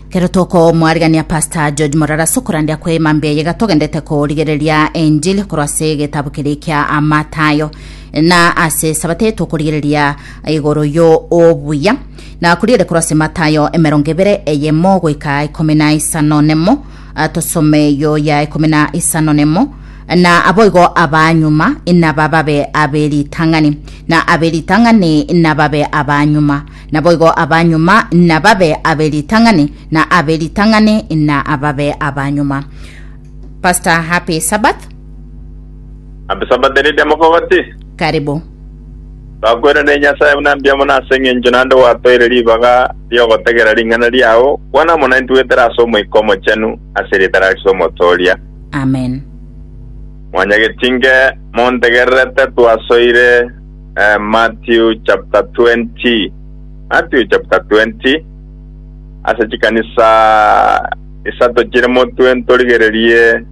Kero tokomwarigania Pastor George Morara ase okorandia kw'Eema Mbuya Yega togendete korigereria enchili korwa ase egetabu keria kia Amatayo. Na ase esabato eye tokorigereria igoro yo obuya. Na korigere korwa ase Matayo emerongo ebere eyemo goika ikomi na isano nemo. Ah, Tosome eyo ya ikomi na isano nemo. Na aboigo abanyuma inabababe aberitang'ani, na aberitang'ani inababe abanyuma. Naboigo abanyuma nababe abe ritang'ani, na abe ritang'ani na ababe abanyuma. Pastor, happy Sabbath. Happy Sabbath Lydia Mokogoti. Karibu. Twakoire ne Nyasae buna mbuya mono ase eng'encho naende gwatoeire ribaga ri'ogotegera ring'ana riao. Kwana mono intwe goetera ase Omoika Omochenu ase eritara riso Omotooria. Amen. Mwanyageti inge montegererete twasoire. Eh, Matthew chapter 20. Matthew chapter 20. Ase chikanisa isato chire motwe ntorigererie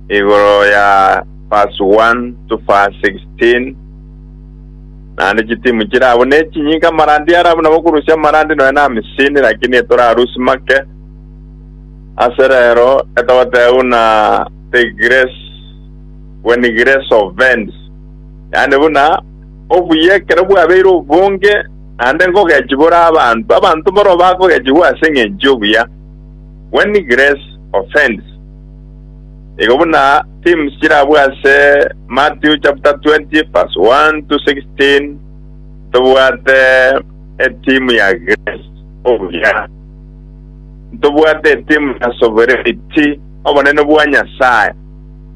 igoro ya verse 1 to verse 16. Naende chitimu chire abo ne chinyinga marandi arabo nabo korusia marandi nonya na misini lakini etorarusi make. Ase rero etogoteuna the grace when grace of vents Yaani buna obuya ekero bwabeire obonge, naende nkogechigwa ore abanto, abanto mboro bakogechigwa ase engencho y'obuya, when grace offends. Nigo buna themes chirabwo ase Matthew chapter 20 verse 1 to 16, Ntobwate etheme ya grace, obuya. Ntobwate etheme ya sovereignty, obonene bwa Nyasae.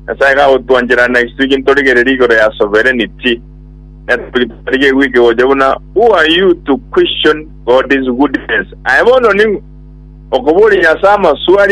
Nyasae gagotwanchera na isiko gintorigererie igoro ya sovereignty, netogi totarigeti gwika gocha buna Who are you to question God's goodness? Aye bono ning'o? Okoboria Nyasae amaswali